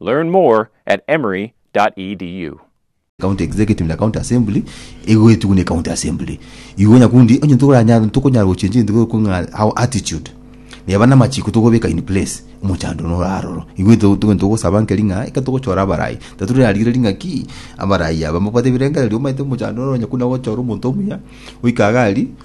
Learn more at emory.edu. County Executive na County Assembly egoetigwa ne County Assembly. Igo nyakundi onye ntokoranya ntokonyara gochencha egento gokwa ng'a our attitude neba namachiko togobeka in place omochando nora aroro. Igo eto togo ntogosaba nkeri ng'a ekero togochora abarayi tatore na rigereri ng'a ki abarayi aba mbabwate ebirengererio omanyete omochando noro nyakundi nagochora omonto omuya oika iga aria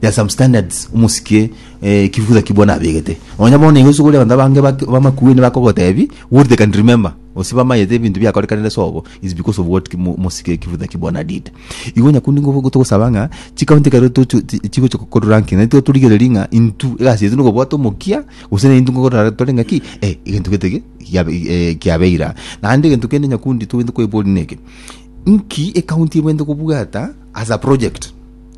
There are some standards omosikie eh, kifusa ki bono abegete. Nonya bono igo sugore abanto abange bak- bamakueni bakogotebi what they can remember. Gose bamayete ebinto biakorekanire sobo is because of what ki- mo- omosikie kifusa ki bono did. Igo nyakundi ngogo togosaba ng'a chikaunti ekero tocho- ti- chigocha gokorwa ranking naitwe torigererie ng'a intwe egasi yaito nokobwata omokia gose naintwe nkogorara tore ng'a ki eh, egento gete ki giabe- eh, kiabeira. Naende egento kende nyakundi togende koiboria neke, nki ekaunti ebwenerete kobwata as a project?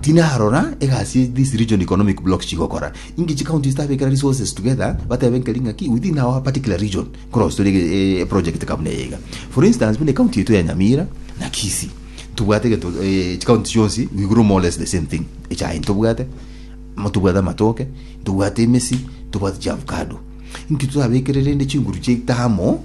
Tinarora egasi these regional economic blocks chigokora, inki chicounties tabekera resources together batebe nkeri ng'aki within our particular region nkorosire eproject kabuna eye iga. For instance buna ecounty yaito ya Nyamira na Kisii ntobwate egento chicounty chionsi we grow more or less the same thing, echae ntobwate, tobwate amatoke, tobwate emesi, tobwate chiavocado. Inki totabekere rende chinguru chiaito amo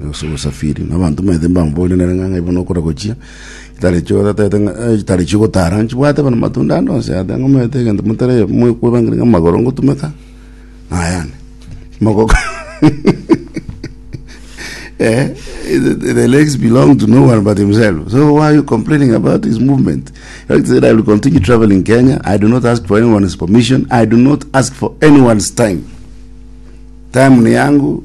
Gose ogosafiri, na abanto mbaete mbamoborie nere ng'a ibono okora gochia, chitari chio otatete ng'a eh, chitari chio ogotara nchibwate bono matunda ande onsi aya, taiga omanyete egento motari mwe kwebangeria ng'a amagoro ngotumeka, nayane. Mogoko. Eh, the, the legs belong to no one but himself. So why are you complaining about his movement? Like I said, I will continue traveling Kenya. I do not ask for anyone's permission. I do not ask for anyone's time. Time ni yangu,